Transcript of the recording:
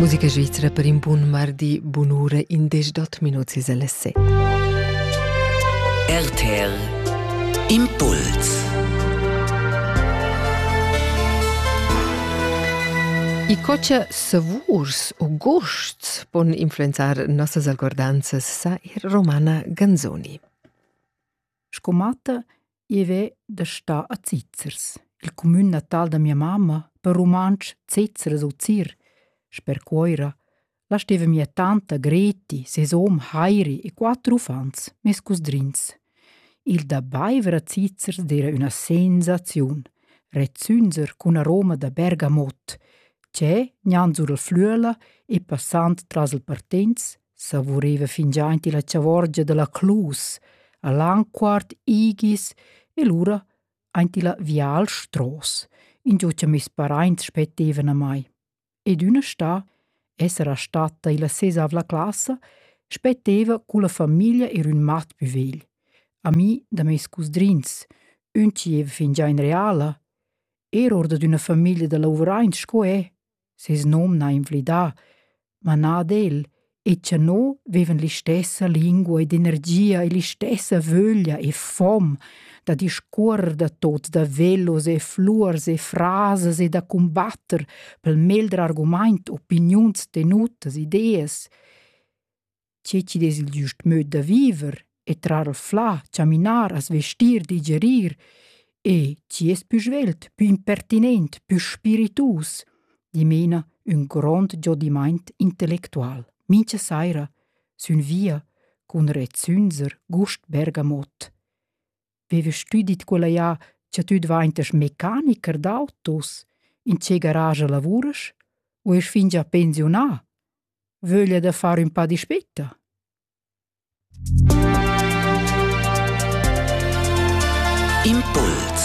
Musica svizra per in bun mardi, bun'ura, indesch dot minuts is alle set. RTL Impuls I cocha savurs o gusts pon influenzar nossas algordanzas, sa ir Romana Ganzoni. Sco matta I vè da stà a Zizers, il cumün natal da mia mamma, per rumantsch Zizers u Zir. Sper Cuoira la steva mia tanta Greti, ses hom Heiri e quatter uffants, mes cusdrins. Il da baiver a Zizers d'era üna sensaziun, rezzünzer cun aroma da Bergamot, che, gnanc sur il Flüela e passand tras il Partenz, savuriva fingià aint illa chavorgia da la Clus, a Lanquart, Igis e lura aint illa Vial Stross, ingio cha meis paraints spettevan a mai. Ed üna stà, essera statta illa sesavla classa, spetteva culla famiglia ir ün mat pü vegl, ami da meis cusdrins, ün chi eva fingià in reala, er or dad üna famiglia da lavuraints sco e. ses nom n'ha inflidà, ma na ad el, e cha no vevan l'istessa lingua ed energia e l'istessa vöglia e fom da discuorrer da tots, da velos e fluors e frasas e da cumbatter pel meglder argumaint opiniuns tenutas, ideas. tge chi'd es il giust möd da viver e trar o flà, chaminar, as vestir, digerir e chi es pü svelt, pü impertinent, pü spiritus, dimena ün grond giodimaint intellectual. Mincha saira sün via cun rezzünzer Gust Bergamot. Vevast tü dit quella ja cha tü dvaintas mecanicher d'autos? In che garage lavuras? U esch fingià pensiunà? vöglia da far ün pa dispetta? Impuls